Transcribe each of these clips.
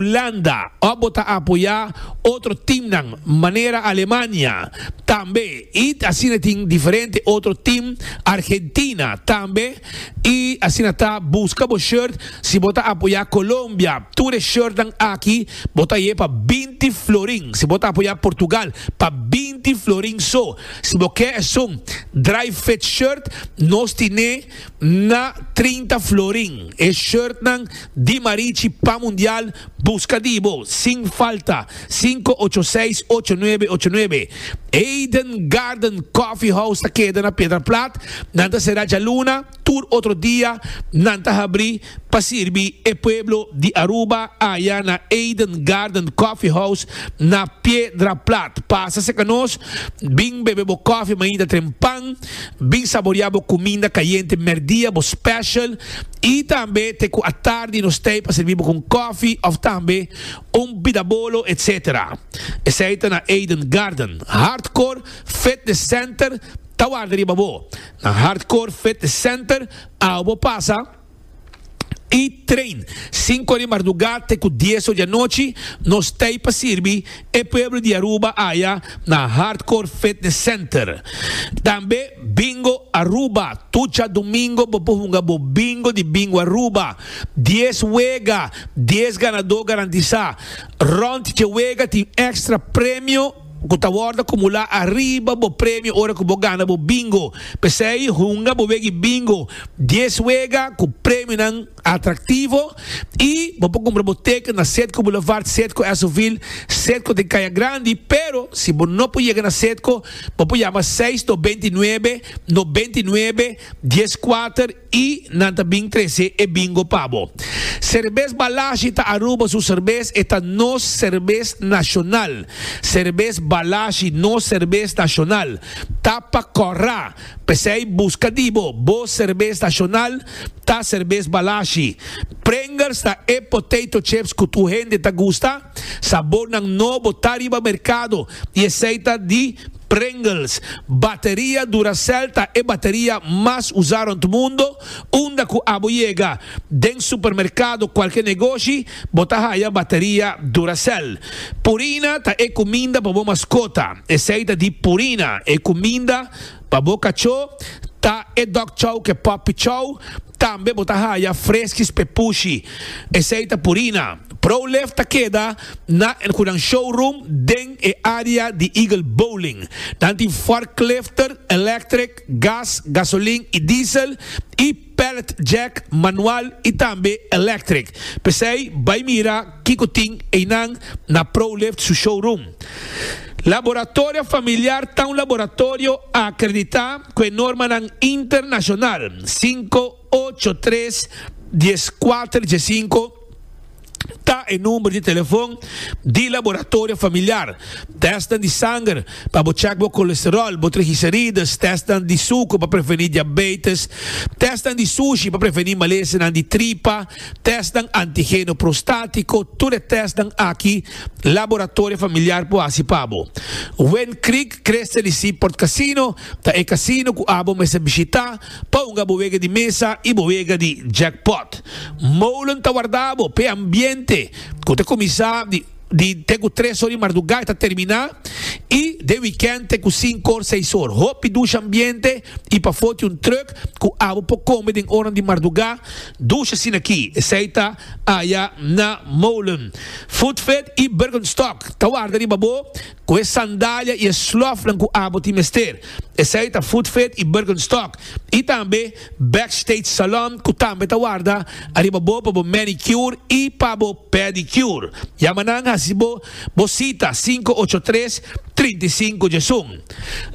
Landa, ò bo ta apoyá otro teamnan manera Alemania, tambe i asina tin diferente otro team Argentina tambe i asina ta buska bo shirt si bo ta apoyá Colombia tur e shirtnan aki bo ta ye pa binti florin si bo ta apoyá Portugal pa binti florin so si bo ke esun dry fit shirt nos tine Na trinta florin e shirtnan di Marichi pa Mundial buska di bo sin falta sinku ocho seis ocho nuebe ocho nuebe Eden Garden Coffee House ta keda na Piedra Plat nan ta sera djaluna tur otro dia nan ta habri pa sirbi e pueblo di Aruba aya na Eden Garden Coffee House na Piedra Plat. Pasa cerca nos, bin bebe bo koffie mainta trempan, bin saborea bo cuminda cayente merdia, bo special, y tambe te cu atardi nos tey pa sirbi bo cu un koffie of tambe un bidabolo etc. Esey ta na Eden Garden. Hardcore Fitness Center ta warda riba bo. Na Hardcore Fitness Center, awo bo pasa. i train sinku ora di mardugá te ku dies ora di anochi nos ta ei pa sirbi e pueblo di Aruba aya na Hardcore Fitness Center tambe Bingo Aruba tur dja domingo bo por hunga bo bingo di Bingo Aruba dies wega dies ganadó garantisá rònt dje wega tin extra premio. ku ta wòrdu akumulá ariba bo premio ora ku bo gana bo bingo. P'esei hunga bo wega e bingo dies wega ku premionan atraktivo i bo por kumpra bo teken na Sedco Boulevard, Sedco Esovil, Sedco den Kaya Grandi, pero si bo no por yega na Sedco bo por yama seis dos binti nuebe no binti nuebe dies kuater. I nan ta bin trese e bingo pa bo. Serbes Balashi ta Aruba su serbes, e ta nos serbes nashonal. Serbes Balashi, nos serbes nashonal, ta pa kòrra. P'esei buska di bo, bo serbes nashonal ta Serbes Balashi. Pringles ta e potato chips ku tur hende ta gusta. Sabornan nobo ta riba merkado i esei ta di Pringles, Bateria Duracell ta e bateria mas usá rond mundo, unda ku abo yega den supermerkado kualke negoshi bo ta haya bateria Duracell. Purina ta e kuminda pa bo maskota, esei ta di Purina, e kuminda pa bo kachó ta e Dog Chow ke Puppy Chow, tambe bo ta haya Friskies Pepushi, esei ta Purina. Pro Life ta keda na el cu nan showroom den e area di Eagle Bowling. Nan tin forklifter, electric, gas, gasolin y diesel, y pallet jack, manual y tambe electric. P'esey bay mira kico tin eynan na ProLift su showroom. Laboratorio Familiar ta un laboratorio a acredita cu e normanan internacional. Cinco. Ocho tres dies kuater dies sinku ta e number di telefon di Laboratorio Familiar. Testnan di sanger pa bo check bo colesterol, bo trigicerides, testnan di suker pa preveni diabetes, testnan di sushi pa preveni malesenan di tripa, testnan antigeno prostatiko, tur e testnan aki Laboratorio Familiar por hasi pa bo. Wind Creek Crystal y Seaport Casino ta e casino cu abo mester bishita Ponga bo wega di mesa i bo wega di jackpot. Molen ta warda bo p'e ambiente ku ta kuminsá di te ku tres or di marduga i ta terminá i den wikènt te ku sinku or seis or. Hopi dusha ambiente i pafó tin un trùk ku abo por kome den ornan di marduga. Dusha sinakí esei ta aya na Molen, Foodfed i Bergenstock ta warda riba bo. Cu e sandalia y e slofnan cu abo tin mester, esey ta Footfit y Birkenstock, y tambe Backstage Salon cu tambe ta warda ariba bo pa bo manicure y pa bo pedicure. Yama nan haci bo bo cita cinco ocho tres, trinta y cinco djesun.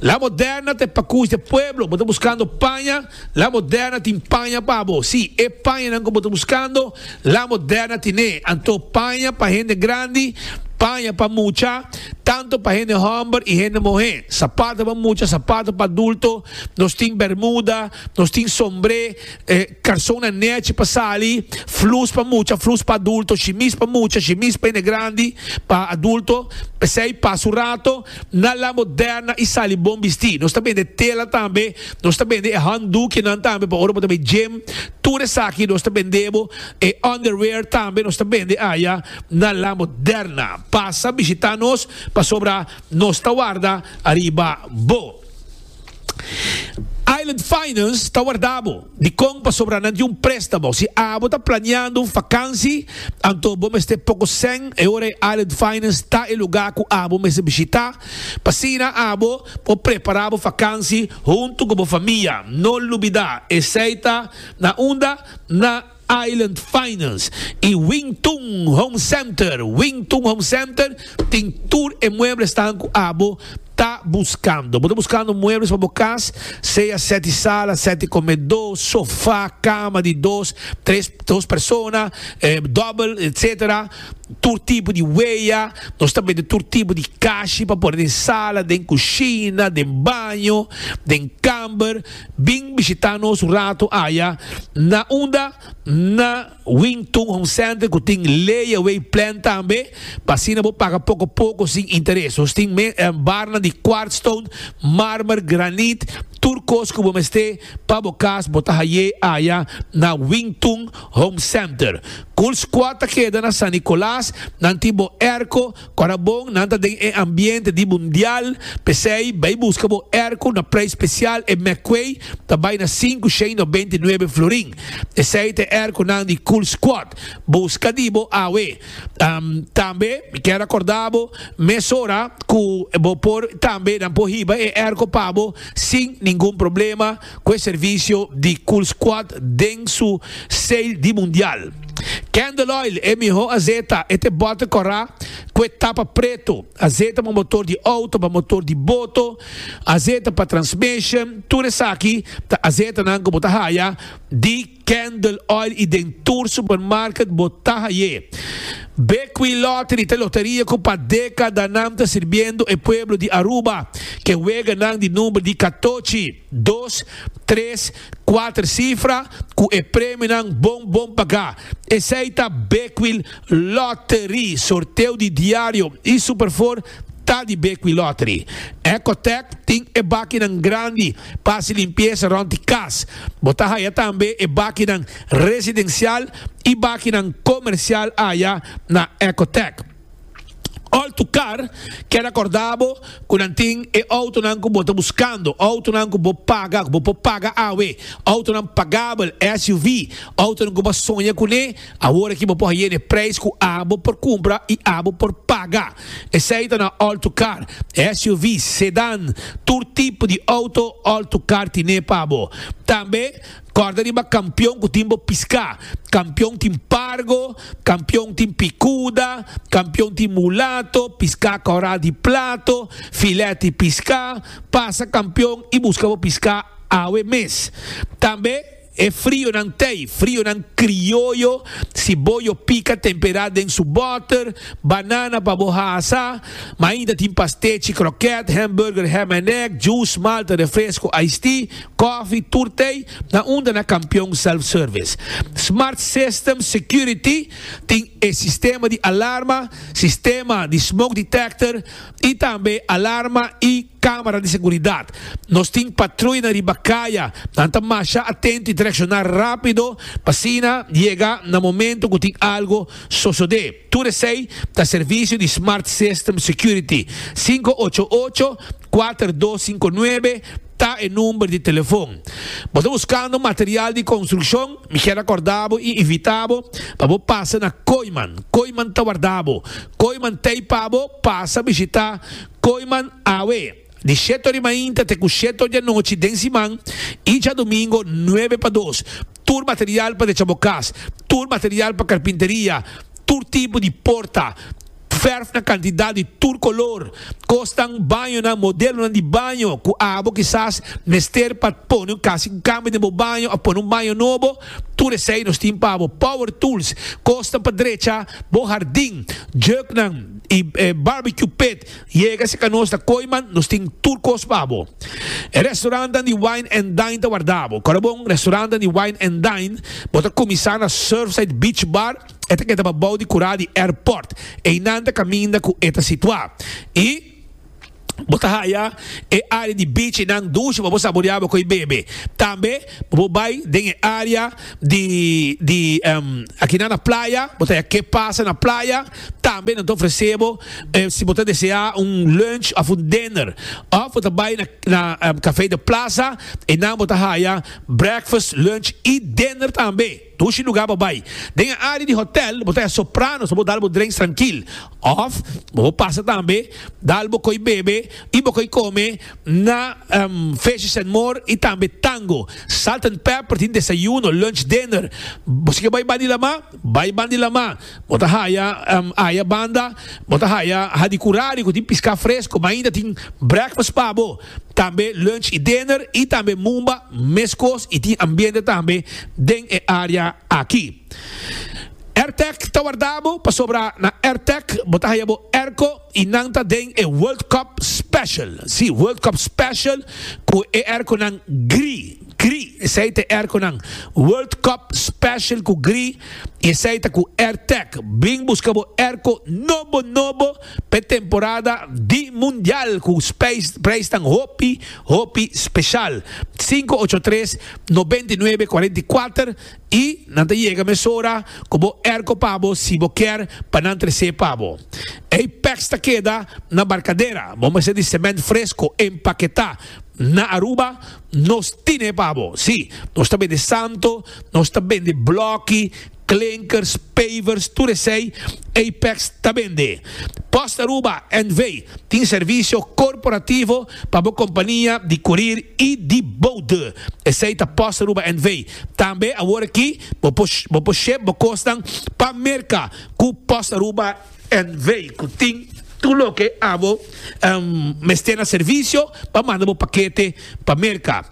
La Moderna ta e pacush de pueblo, bo ta buscando paña? La Moderna tin paña pa bo. Sí, e pañanan ku bo ta buskando, La Moderna tin'é. Anto paña pa hende grandi, paña pa mucha, tantu pa hende hòmber i hende muhé, sapato pa mucha, sapato pa adulto, nos tin bèrmuda, nos tin sombré, karsonnan nèchi pa sali, flus pa mucha, flus pa adulto, shimis pa mucha, shimis pa hende grandi, pa adulto, p'esei pasa un rato. Na La Moderna i sali bon bistí. Nos ta bende tela tambe. Nos ta bende e handdoekjenan tambe pa ora bo ta bai gym. Tur esaki nos ta bende bo. E underwear tambe nos ta bende aya na La Moderna. Pasa bishitá nos pasobra nos ta warda ariba bo. Island Finance ta warda bo. Dikon pasobra nan tin un préstamo. Si abo ta planeando un fakansi, anto bo mester poko sèn e ora e Island Finance ta e lugá ku abo mester bishitá. P'asina abo por prepará bo fakansi huntu ku bo famia. No lubidá, esei ta na unda na. Island Finance y Wing Tun Home Center, Wing Tun Home Center tin tur e muebles tan cu abo ta buscando. Bo ta buscando muebles pa bo cas, sea sete sala, sete comedo, sofa, cama di dos, tres, dos persona, double, etc. Tur tipo di wea, nos ta bende tur tipo di cashi pa pone den sala, den cushina, den baño, den camber. Bin bishitá nos un ratu aya na unda na Wing Tun Home Center ku tin layaway plan tambe pa asina bo paga poko poko sin interes. Nos tin barnan di quartz stone, marmer, granit, tur kos ku bo mester pa bo kas bo ta hay'é aya na Wing Tun Home Center. Cool Squad ta keda na San Nicolas, nan tin bo airco, Ora bon nan ta den e ambiente di mundial, p'esei bai buska bo erko na prei spesial, e mekkwei ta bai na sinku shei nobenta i nuebe florin. Esei ta e erkonan di Cool Squad, buska di bo awe. Tambe mi kier rakorda bo mesora ku bo por tambe nan por hiba e erko pa bo sin ningun problema. cu e servicio di Cool Squad den su sale di Mundial. Candle Oil, e miho azeta, e te bote cora cu e tapa preto, azeta pa motor di auto, pa motor di boto, azeta pa transmission, tur esaki ta azetanan cu bo ta haya di. Candle Oil y den tur supermarket bo ta haye. Bequi Lottery ta e loteria cu pa decadanan ta sirbiendo e pueblo di Aruba cu e weganan di number di catochi, dos, tres, cuater cifra cu e premionan bon bon paga. Esey ta Bequi Lottery. Sorteo di diario y Superfour ta di Bequi Lottery. Ecotech tin e bakinan grandi. Pa hasi limpiesa rond di kas. Bo ta haya tambe e bakinan residensial i bakinan komersial aya na Ecotec. Alto Car kere akordá bo ku nan tin e outonan ku bo ta buskando, outonan ku bo paga, ku bo por paga awe, outonan pagabel, SUV, outonan ku bo a soña kuné. Awor aki bo por haye n'e prijs cu abo por cumpra y abo por paga. Esey ta na all-to-car, SUV's, sedan, tur tipo di auto all-to-car tine pa bo. Tambe corda riba Campeon cu tin bo pisca. Campeon tin Pargo, Campeon tin Picuda, Campeon tin Mulato, pisca Coral di Plato, Filet di Pisca. Pasa Campeon y busca bo pisca awe mes. Tambe. E frionan tei, frionan krioyo, si bo yo pika tempera den su boter, banana pa bo hasa, ma ainda tin pastechi, kroket, hamburger, ham en egg, juice, malta, refresco, iced tea, kofi, tur tei, na unda na Kampion Self Service. Smart Systems Security tin e sistema di alarma, sistema di smoke detector, Y tambe alarma y camera di seguridad. Nos tin patruyanan riba caya, nan ta masha atento y ta reacciona rapido pa asina yega na momento cu tin algo sosode. Tur esey ta servicio di Smart System Security, sinku ocho ocho, kuater dos sinku nuebe, Ta e number di telefon. Bo ta buskando material di konstrukshon? Mi kier akorda bo i invita bo pa bo pasa na Koiman. Koiman ta warda bo. Koiman t'ei pa bo pasa bishita Koiman awe di shete ori mainta te ku shete ori di anochi den siman i djadumingo nuebe pa dos. tur material pa decha bo kas, tur material pa karpinteria, tur tipo di porta, fèrf na kantidat di tur kolor, kosnan, bañonan, modelonan di baño ku abo kisas mester pa pone un kas di kambio den bo baño òf pone un baño nobo, tur esei nos tin pa bo. Power tools, kosnan pa drecha bo hardin, jèknan i barbecue pit. Yega si ka nos ta koy man nos tin tur kos pa bo. E restaurantnan di wine and dine ta warda bo. Korabon, restaurantnan di wine and dine, bo ta kuminsá na Surfside Beach Bar, e ta keda pa bou di kurá di airport. Einan ta kaminda ku e ta situá. I bo ta haya e área di beach einan dushe pa bo saboriá bo koy bebe. Tambe bo por bai den e área di di akinan na playa, bo ta haya ke pasa na playa. Tambe nan ta ofresé bo si bo ta deseá un lunch òf un dinner. Òf bo ta bai na Café de Plaza, einan bo ta haya breakfast, lunch i dinner tambe. Dushi lugá bo bai. Den e área di hotèl bo ta haya soprano so bo dal bo drinks trankil. Òf bo por pasa tambe dal bo koi bebe i bo koi kome na Fishes and More i tambe Tango. Salt and Pepper tin desayuno, lunch, dinner. Bo si ke bai Bandilama, bai Bandilama. Bo ta haya aya banda, bo ta haya hadi ku radi ku tin piská fresko, ma ainda tin breakfast pa bo, tambe lunch i dinner i tambe mumba meskos i tin ambiente tambe den e área aki. Airtec ta wardá bo pasobra na Airtec bo ta haya bo airco, Y nan ta den e World Cup Special, si, World Cup Special cu e airconan gri, gri, esey ta e airconan World Cup Special cu gri y esey ta cu Airtec. Bring busca bo airco nobo, nobo pa e temporada di Mundial cu prijsnan hopi, hopi special. Cinco ocho tres, noventa y nuebe cuarenta y cuater I nan ta yega mesora ku bo erko pa bo si bo kier pa nan tres'é pa bo. Ei pèks ta keda na barkadera, bo mester di semènt fresko empaketá. Na Aruba nos tin'é pa bo. Sí, nos ta bende santo, nos ta bende blòki, klinkers, pavers, tur esei ei pèks ta bende. Post Aruba NV. tin servisio korporativo pa bo kompania di kurir i di boude. Esei ta Post Aruba NV. Tambe awor aki bo por bo por shep bo kosnan pa Merka ku Pos Aruba NV. ku tin tur loke abo mester na servisio pa manda bo pakete pa Merka.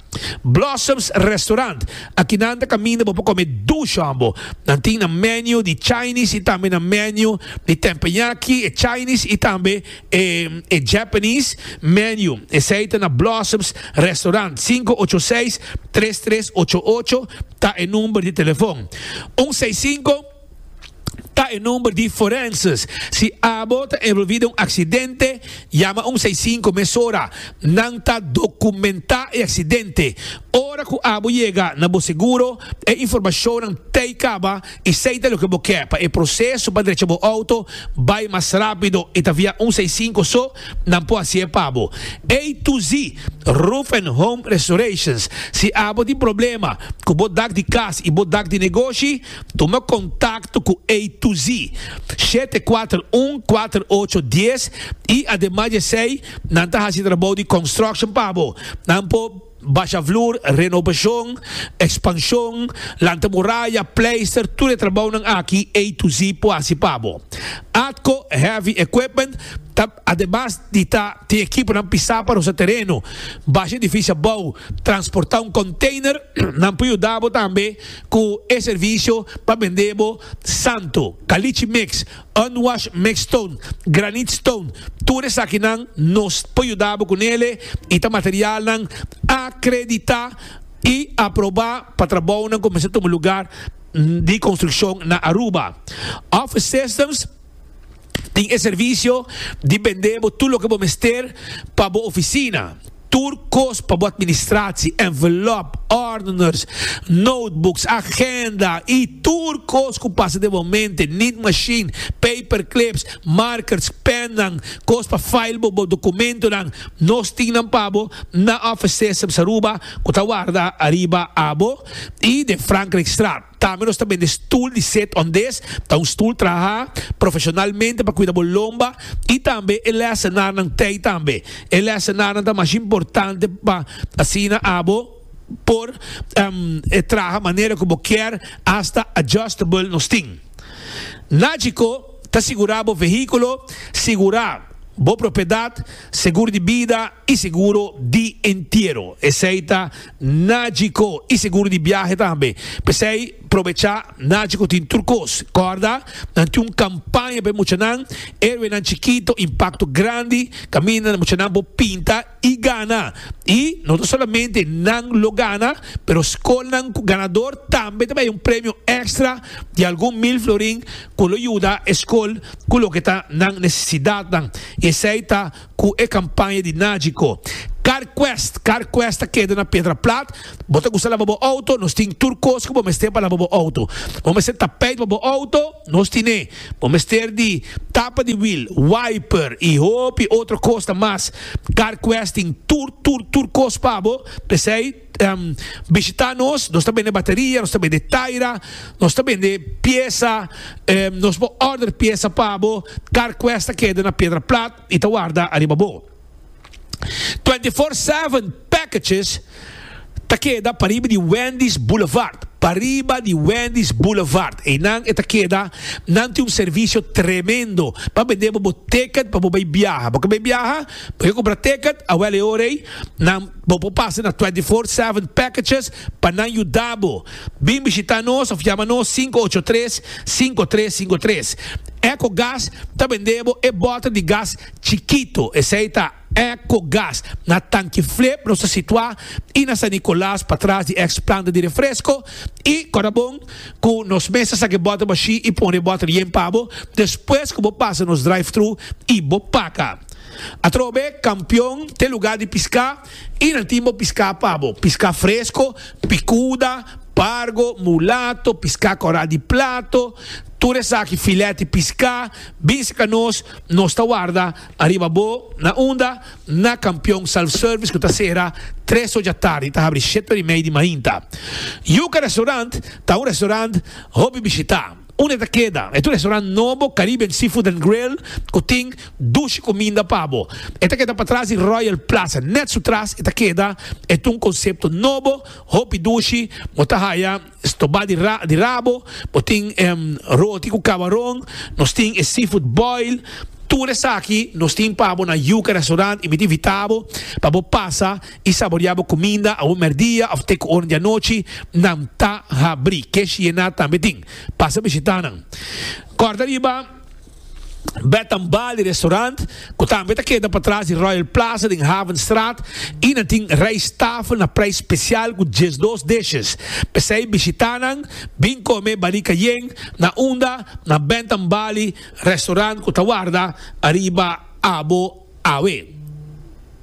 Blossoms Restaurant, Aki nan ta kaminda bo por kome dus hòmbo. Nan tin nan menu di Chinese i tambe nan menu di tempenyaki, e Chinese i tambe E Japanese Menu, esei ta na Blossoms Restaurant, sinku ocho seis, tres tres ocho ocho ta e number di telefon. Un seis sinku ta e number di Forenses. Si abo ta envolvi den un aksidente, yama un seis sinku mesora. Nan ta dokumentá e aksidente. Ora ku abo yega na bo seguro, e informashonnan tei kaba y sa y ta loke bo ke pa e proceso pa drecha bo auto bay mas rapido y ta via un sa y cinco so nan por haci e pa bo A to Z Roof and Home Restorations si abo tin problema cu bo dak di cas y bo dak di negoshi tuma contacto cu A to Z shete kuater un kuater ocho dies y ademas di esey nan ta haci trabou di construction pa bo nan por Basha vloer, renobashon, ekspanshon, lanta muraya, pleister, tur e trabounan aki A to Z por hasi pa bo. Atco Heavy Equipment ta ademas di ta tin ekiponan pisá pa rosa tereno, basha edifisio abou, transportá un konteiner, nan por yuda bo tambe ku e servisio pa bendé bo santo, kalichi mix, Unwash Mix Stone, Granite Stone, tur esakinan nos por yuda bo ku nele i ta materialnan akreditá i aprobá pa trabounan ku mester tuma lugá di konstrukshon na Aruba. Office Systems tin e servisio di bendé bo tur loke bo mester pa bo ofisina. Tur kos pa bo administratie, envelop, ordeners, notebooks, agenda y tur kos cu pasa den bo mente, need machine, paper clips, markers, pennan, kos pa file bo bo documentonan, nos tin nan pa bo na Office Systems Aruba cu ta warda ariba abo y den Frankrijkstraat. Tambe nos ta bende stul di set on des, ta un stul traha profesionalmente pa kuida bo lomba y tambe e lesenarnan tey tambe. E lesenarnan ta mas importante pa asina abo por traha manera cu bo kier, hasta adjustable nos tin. Nagico ta sigura bo vehiculo, sigura bo propiedad, segur di bida y seguro di entiero. Esey ta Najico y seguro di biahe tambe. P'esey probecha Najico tin tur cos. Corda, nan tin un campaña pa e muchanan, Erwenan Chikito, Impacto Grandi, caminda muchanan por pinta y gana. Y no ta solamente nan lo gana, pero scolnan cu ganador tambe ta bay un premio extra di algun mil florin cu lo yuda e scol cu loke ta nan necesidadnan. Y esey ta Cu e campaña di Nagico. Carquest, Carquest ta keda na Pedra Plat. Bo ta gusta laba bo auto? Nos tin tur cos cu bo mester pa laba bo auto. Bo mester tapijt pa bo auto? Nos tin'e. Bo mester di tapa di wiel, wiper y hopi otro cosnan mas. Carquest tin tur, tur, tur cos pa bo. P'esey. bishita nos, nos ta bende bateria, nos ta bende taira, nos ta bende piesa, nos por order piesa pa bo, car quest ta keda na piedra plat y ta warda ariba bo. Twenty four seven packages ta keda pariba di Wendy's Boulevard, pariba di Wendy's Boulevard, eynan e ta keda, nan tin un servicio tremendo pa bende bo bo ticket pa bo bay biaha, bo quier bay biaha bo quier cumpra ticket awel e ora ey nan. Bo por pasa na Twenty Four Seven Packages pa nan yuda bo. Bin bishita nos of yama nos sinku ocho tres, sinku tres sinku tres. Echo Gas ta bende bo e bota di gas chikito, esei ta Echo Gas. Na Tanki Flip nos ta situa i na San Nicolas patras di ex planta di refresco i Corabon cu nos mes ta saca e bota bashi i pone e bota yen pa bo despues cu bo pasa nos drive-thru i bo paca. Atrobe kampion te lugá di piská i nan tin bo piská pa bo. Piská fresko, pikuda, pargo, mulato, piská kòrá di plato, tur esaki filèt di piská bin serka nos, nos ta warda ariba bo. Na unda? Na kampion Self Service ku ta sera tres oja tardi i ta habri shete ora i mei di mainta. Yuka Restaurant ta un restaurant hopi bishitá. Un e ta keda e tu restaurant nobo Caribbean Seafood and Grill ku tin dushi kuminda pa bo. E ta keda patras di Royal Plaza. Nèt su tras e ta keda e tu un konsepto nobo, hopi dushi, bo ta haya stobá di di rabo, bo tin roti ku kabaron, nos tin e seafood boil, tur esaki nos tin pa bo na Yuca Restaurant y mi ta invitá bo pa bo pasa i saboriá bo kuminda awor mèrdia òf te ku ora di anochi, nan ta habrí. Ke Shiena tambe tin. Pasa bishitá nan. Kòrda riba Bed and Bali Restaurant, ku tambe ta keda patras di Royal Plaza den Havenstraat, i nan tin rijsttafel na preis spesial ku diesdos dishes. P'esei bishitá nan, bin kome Bali Cayenne na unda na Bed and Bali Restaurant ku ta warda ariba abo awe.